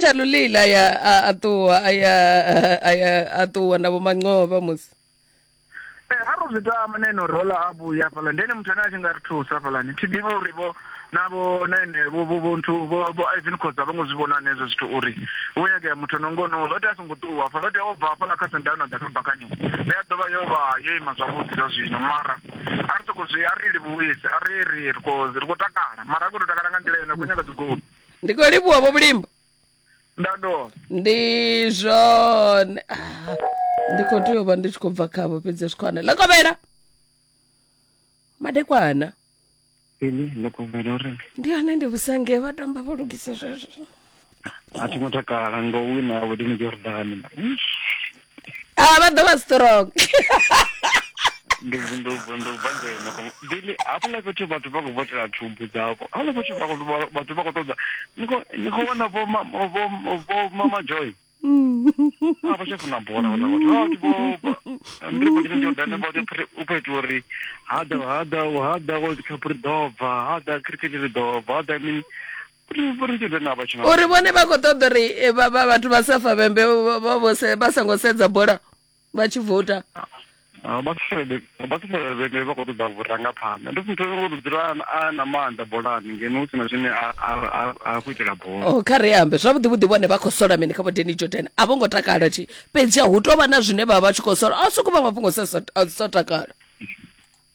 Shalulile aya a- a ṱuwa aya a- aya a ṱuwa na vho mancova musi Eh, ha ro zwi tama na ino rola a vhuya hafhaḽa ndi ene muthu ane a tshi nga ri thusa hafhaḽani thi ḓivhi uri vho na vho na ene vho vho vho nthu vho vho ivan khoza vho ngo zwi vhona hanezwo zwithu uri hu nyagea muthu no ngono lo tea a songo ṱuwa hafha lo tea o bva hafhaḽa kha sendana ḓa kha bakani ndi a ḓovha yo vha yo ima zwavhuḓi zwa zwino mara a ri soko zwi a ri livhuwise a ri ri ri khou ri khou takala mara a khou tou takala nga nḓila ine a khou nyaga dzigoli ndi khou livhuwa vho vhulimbo nda do ndi zwone Ah, ndi khou tea u vha ndi tshi khou bva khavho fhedzi zwi khone ḽekovhela madekwana ini ḽekovhela uri ndi hone ndi vhusange vha tamba vho lugisa zwezwo a thi ngo takala ngo wina ya vhudini jordani a ah, vha ḓo vha strong ndivhili hafhaḽa fhethu vhathu vha khou votela thumbu dzavho hafhaḽa fhethu vhathu vha khou ṱoḓa ni khou vhona vhomamajoy a vha tsha funa bola vhathu ndiri vho tshine jordane vha u khou itiwa uri hada hada hada world cup ri ḓo bva hada cricket ri ḓo bva hada mini uri vhone vha khou ṱoḓa uri eh, vhathu vha safa vhembe vha songo sedza bola vha tshi vouta vhaṱufelevhene vha khou ṱoḓa vhurangaphanḓa ndi muthu ngo dzula a na maanḓa bolani ngeno hu sina zwine a khou itela bola oh, kha ri ambe zwavhuḓi vhuḓi vhone vha khou sola mini kha vhodeni jordan a vho ngo takala thi fhedzi hu tou vha na zwine vha vha tshi khou sola a soko vha mafhungo sa takala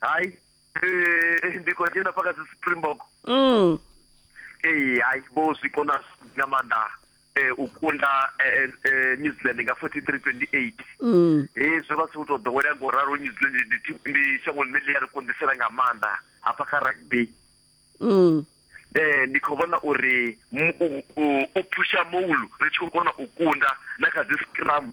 hayi eh, ndi khou dzhena paka dzi springbok mm. ee eh, hayi vho zwi kona nga maanḓa eh, u kunda eh, eh, new zealand nga 4328 mm. eh, zwo vha si u tou ḓowelea ngo ralo new zealand ndi shango ḽine ḽi ya ri konḓisela nga maanḓa hafha kha rugby mm. eh ndi khou vhona uri u phusha moulu ri tshi khou kona u kunda na kha dzi scrum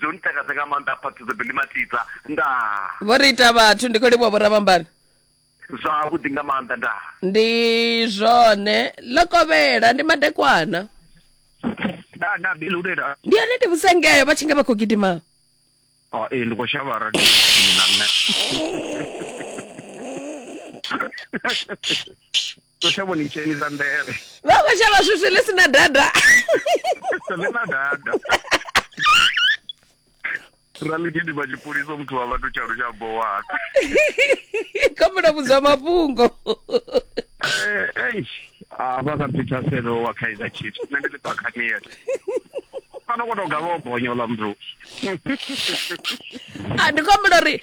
zwo ntakadza nga maanḓa phaṱhudzo bili matidza ndaa vho ri ita vhathu ndi khou livhuwa vhoravhambani zwavhuḓi nga maanḓa ndaa ndi zwone ḽo kovhela ndi madekwana ndaa ndaa bili ulela ndi yone ndi vhusengeyo vha tshi nga vha khou gidima oh, ee ndi khou shavha radio na nṋe Kothe vho ni dzhenisa nḓevhe. Vha khou shavha swifwi ḽi si na dada. Ḽi na dada. ra ḽi gidima tshipholisa muthu wa vhathu tsha lutsha bowana khomela vhudzwa mafhungo avha eh, ka peter selo wa kaizer chiefs nṋe ndi ḽi bakhanier fana ko to gavha o bonya ola mndu a ndi khomela uri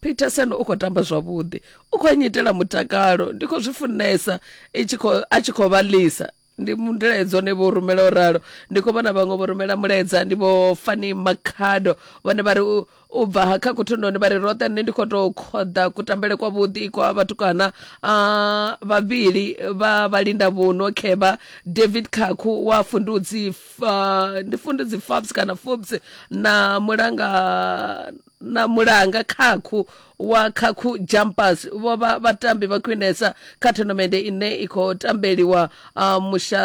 peterson u khou tamba zwavhuḓi u khou nyitela mutakalo ndi khou zwi funesa a tshi khou vha lisa ndi mulaedza one vho rumela o ralo ndi khou vhona vhaṅwe vho rumela mulaedza ndi vho fani makhado vhone vha ri u bva ha kha kuthundoni vha ri roṱhe nṋe ndi khou tou khoḓa kutambele kwa vhuḓi kwa vhatukana a vhavhili vha vhalinda vhuno kheba david khakhu wa fundudzi ndi fundudzi fabs kana fobs na mulanga na mulanga khakhu wa khakhu jumpers vho vha vhatambi vha khwinesa kha tournamende ine i khou tambeliwa uh, musha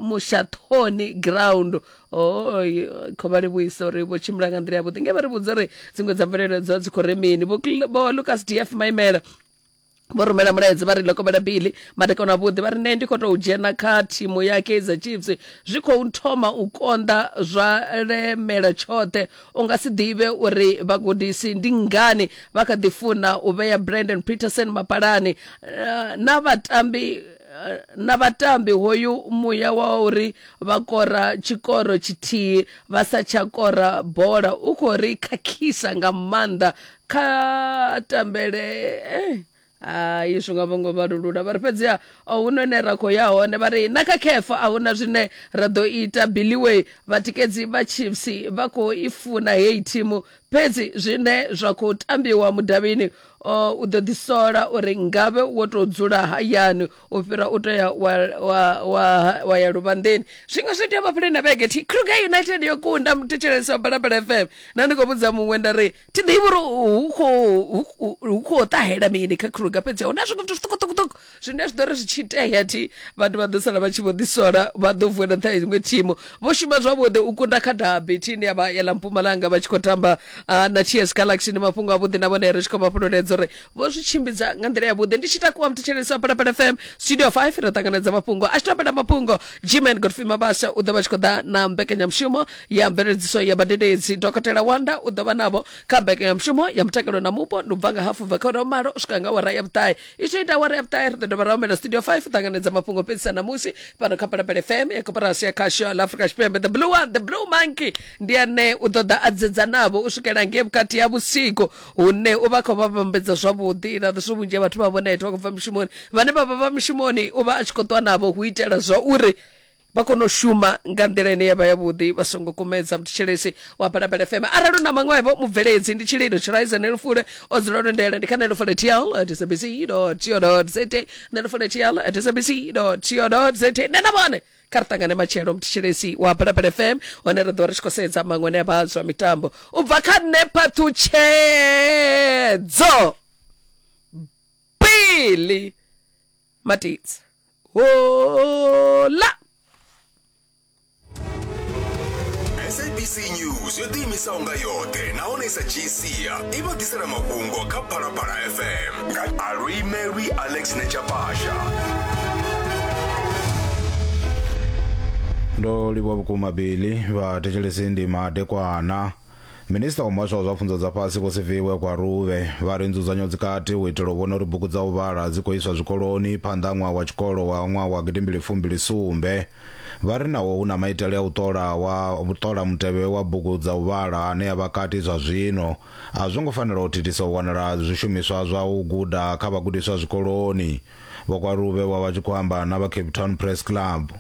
mushathoni ground oi khou vha livhuisa uri vho tshimbila nga nḓila yavhuḓi nge vha ri vhudza uri dziṅwe dza mvelelo dzo dzi khou ri mini vho Cl- vho lucas df maimela vho rumela mulaedza vha ri lokomela bili madekwana avhuḓi vha ri nṋe ndi khou tou dzhena kha thimu ya kaizer chiefs zwi khou thoma u konḓa zwa lemela tshoṱhe u nga si ḓivhe uri vhagudisi ndi ngani vha kha ḓi funa u vhea brandon peterson mapalani eh, na vhatambi eh, na vhatambi hoyu muya wa uri vha kora tshikoro tshithihi vha sa tsha kora bola u khou ri khakhisa nga maanḓa kha tambele eh, hai zwi nga vhongo vhalulula vha ri fhedziha a hu no ine ra khou ya hone vha ri na kha khefa a huna zwine ra ḓo ita billiway vhatikedzi vha chiefs vha khou i funa heyi thimu fhedzi zwine zwa khou tambiwa mudavhini o u ḓo ḓisola uri ngavhe wo tou dzula hayani u fhira u tea wa, wa, wa, wa ya luvhanḓeni zwiṅwe zwi tea vhafhuleni na vhege thi kruger united yo kunda muthetshelesi wa balabala fm na ndi khou vhudza muṅwe nda ri thi ḓivhi uri hu khou hu khou ṱahela mini kha kruga fhedzi huna zwiṅwe zwithu zwiṱukuṱukuṱuku zwine zwi ḓo ri zwi tshi itea thi vhathu vha ḓo sala vha tshi vho ḓisola vha ḓo vuela nṱha iṅwe thimu vho shuma zwavhuḓi u kunda kha dabi thi ine ya vha yela mpumalanga vha tshi khou tamba na ts galaxy ndi mafhungo avhuḓi na vhone ri tshi khou vha fhululedza uri vho zwi tshimbidza nga nḓila yavhuḓi ndi tshi takuwa muthetshelesi wa palapala fm studio 5 ro ṱanganedza mafhungo a tshi topela mafhungo gman godfrey mabasa u ḓo vha tshi khou ḓa na mbekanyamushumo ya mveledziso ya badededzi dokotela wanda u ḓo vha navho kha mbekanyamushumo ya mutakalo na mupo ndi u bva nga hafu bva kha ura malo u swika nga wara ya vhuṱahe i tshi ita wara ya vhuṱahe ri ḓo dovha ra humela studio 5 u ṱanganedza mafhungo fhedzisa ṋamusi fhano kha palapala fm ya koporasi ya khasho ḽa afrika tshipembe the blue one the blue monkey ndi ane u ḓo ḓa a dzedza navho u swikela ngei vhukati ha vhusiku hune u vha khou vha vhambedza zwavhuḓi na zwo vhunzhi ha vhathu vha vhona ete vha khou bva mishumoni vhane vha vha vha mishumoni u vha a tshi khou ṱwa navho hu itela zwa uri vha kone u shuma nga nḓila ine yavha yavhuḓi vha songo kumedza muthetshelesi wa balabala fm arali u na maṅwevho mubveledzi ndi tshililo tshiraiza nelufule o dzula lwo ndela ndi kha nelufule tl at sabc co za nelufule tl at sabc co za nṋe na vhone kha ri ṱangane matshelo mthetshelesi wa balabala fm hone ri ḓo ri tshi khou sedza maṅwe ne vha zwa mitambo u bva kha nṋe phaṱhutshedzo bili matidzi hola sabc news yo ḓiimisaho nga yoṱhe nahone i sa dzhii sia i vha ḓisela mafhungo kha phalaphala fm Alui Mary Alex Nechapasha. ndo livhuwa vhukuma bili vhathetshelesi ndi madekwana minista wa muhasho wa zwa pfunzo dza fhasi vho siviwe kwa ruvhe vha ri nzudzanyo dzikati u itela u vhona uri bugu dza u vhala dzi khou iswa zwikoloni phanḓa ha ṅwaha wa tshikolo wa ṅwaha wa gidimbili fumbili sumbe vha ri naho hu na maitele a u ṱola wa ṱola mutevhe wa bugu dza u vhala ane a vha kati zwa zwino A zwo ngo fanela u thithisa u wanala ha zwishumiswa zwa u guda kha vhagudiswa zwikoloni. Vho Kwalube vho vha tshi khou amba na vha Cape Town Press Club.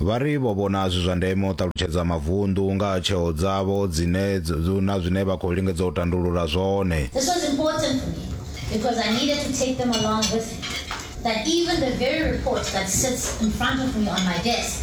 Vha ri vho vhona zwi zwa ndeme u ṱalutshedza mavunḓu nga ha tsheo dzavho dzine na zwine vha khou lingedza u tandulula zwone. This was important for me because I needed to take them along with me that even the very report that sits in front of me on my desk,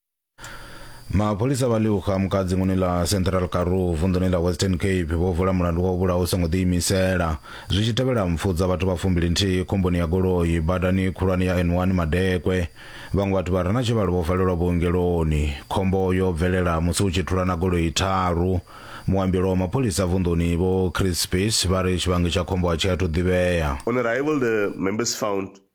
mapholisa vha liuxa mukadzinguni ḽa central karoo vunḓuni ḽa western cape vho vula mulandu wa u vhulaha u songo ḓiimisela zwi tshi tevhela mpfu dza vhathu vha fumbili nthihi khomboni ya goloi badani khulwane ya n1 madekwe vhaṅwe vhathu vha re na tshivhalo vho valelwa vhuongeloni khombo yo bvelela musi hu tshi thulana goloi tharu muambelo wa mapholisa vunḓuni vho chris space vha ri tshivhangi tsha khombo a tshi athu ḓivhea On arrival, the members found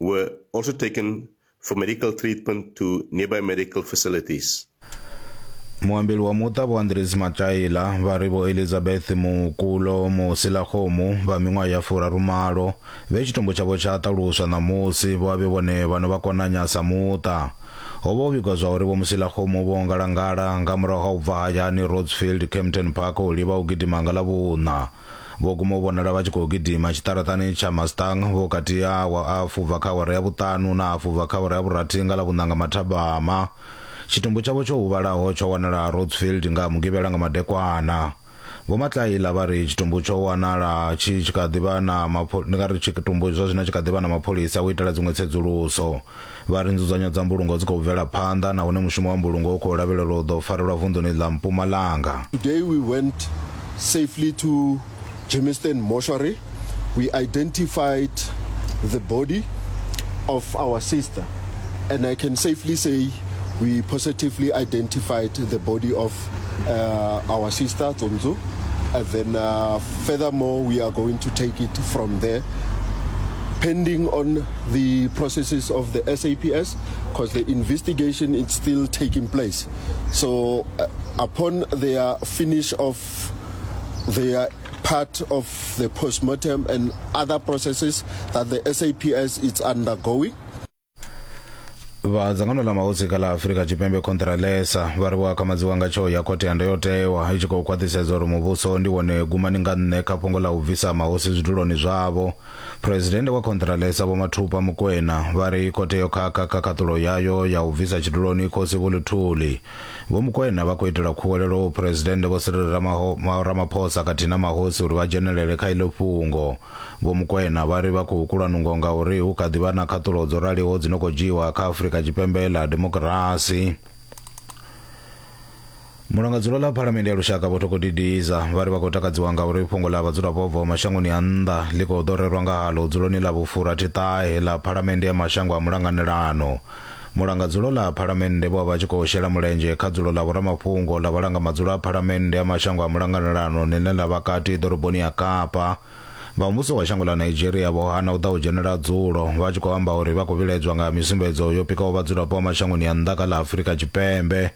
were also taken for medical treatment to nearby medical facilities. muambeli wa muṱa vho andres mataila vha ri vho elizabeth mukulo musilakgomu vha miṅwaha ya furarumalo vhe tshitumbu tshavho tsha ṱaluswa ṋamusi vho vhe vhone vha no vha konanya sa muṱa ho vha ho vhigwa zwa uri vho musilakgomu vho ngalangala nga murahu ha u bva hayani rodsfield campton park u livha u gidima nga ḽa vhuṋa vho guma u vhonala vha tshi khou gidima tshiṱaraṱani tsha mustang vhukati ha awa a fubva kha awara ya vhuṱanu na a fubva kha awara ya vhurathi nga ḽa vhuṋanga mathabama tshitumbu tshavho tsho huvhalaho tsho wanala rotsfield nga mugivhela nga madekwana vho matlaila vha ri tshitumbu tsho wanala tshi tshi kha ḓivha na mapho ndi nga ri tshitumbu zwa zwino tshi kha ḓivha na mapholisa u itela dziṅwe tsedzuluso Vha ri nzudzanyo dza mbulungo dzi khou bvela phanḓa nahone mushumo wa mbulungo u khou lavhelelwa u ḓo farelwa vunḓuni ḽa Mpumalanga. Today we went safely to Germiston Mortuary, we identified the body of our sister and I can safely say we positively identified the body of uh, our sister Tsonzo and then uh, furthermore we are going to take it from there pending on the processes of the SAPS because the investigation is still taking place. So uh, upon their finish of their part of the postmortem and other processes that the SAPS is undergoing, vha dzangano ḽa mahosi kha ḽa afurika tshipembe contralesa vha ri vho akamadziwa nga tsheo ya khothe ya ndayotewa i tshi khou khwaṱhisedza uri muvhuso ndi wone gumani nga nṋe kha fhungo ḽa u bvisa mahosi zwiduloni zwavho Phresidennde wa Khonṱhiralesa Vho Mathupa Mokoena vha ri khothe yo khakha kha khaṱulo yayo ya u bvisa tshiduloni Khosi Vho Luthuli. Vho Mokoena vha khou itela khuwelelo u Phresidennde Vho Cyril Ramaphosa khathihi na mahosi uri vha dzhenelele kha iḽo fhungo. Vho Mokoena vha ri vha khou kulwa nungo ngauri hu kha ḓi vha na khaṱulo dzo raliho dzi no khou dzhiiwa kha Afrika Tshipembe ḽa demokirasi. mulangadzulo ḽa phalamende ya lushaka vho thoko didiza vha ri vha khou takadziwa nga uri fhungo ḽa vhadzulapo vha bvaho mashangoni a nnḓa ḽi khou ḓo rerwa nga haḽo dzuloni ḽa vhufurathi ṱahe ḽa phalamende ya mashango a mulanganelano mulangadzulo ḽa phalamende vho vha vha tshi khou shela mulenzhe kha dzulo ḽa vhoramafhungo ḽa vhalanga madzulo a phalamende ya mashango a mulanganelano ḽine ḽa vha kati ḓoroboni ya kapa vha muvhuso wa shango ḽa nigeria vho hana u ḓa u dzhenela dzulo vha tshi khou amba uri vha khou vhiledzwa nga misumbedzo yo pikaho vhadzulapo vha mashangoni a nnḓa kha ḽa afurika tshipembe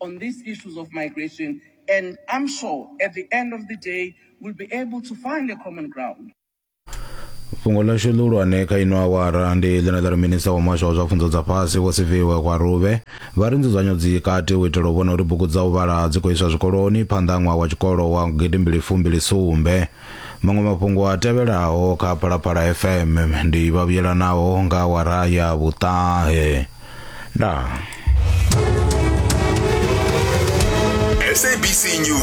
on these issues of migration. And I'm sure at the end of the day, we'll be able to find a common ground. fhungo ḽashu ḽihulwane kha ino awara ndi ḽine ḽa ri minista wa muhasho wa zwa pfunzo dza fhasi vho siviwe kwa ruvhe vha ri nzudzanyo dzi kati u itela u vhona uri bugu dza u vhala dzi khou iswa zwikoloni phanḓa ha ṅwaha wa tshikolo wa gidimbili fumbili sumbe Maṅwe mafhungo a tevhelaho kha Phalaphala FM ndi vha vhuyelanaho nga awara ya vhuṱahe. Ndaa. SABC News.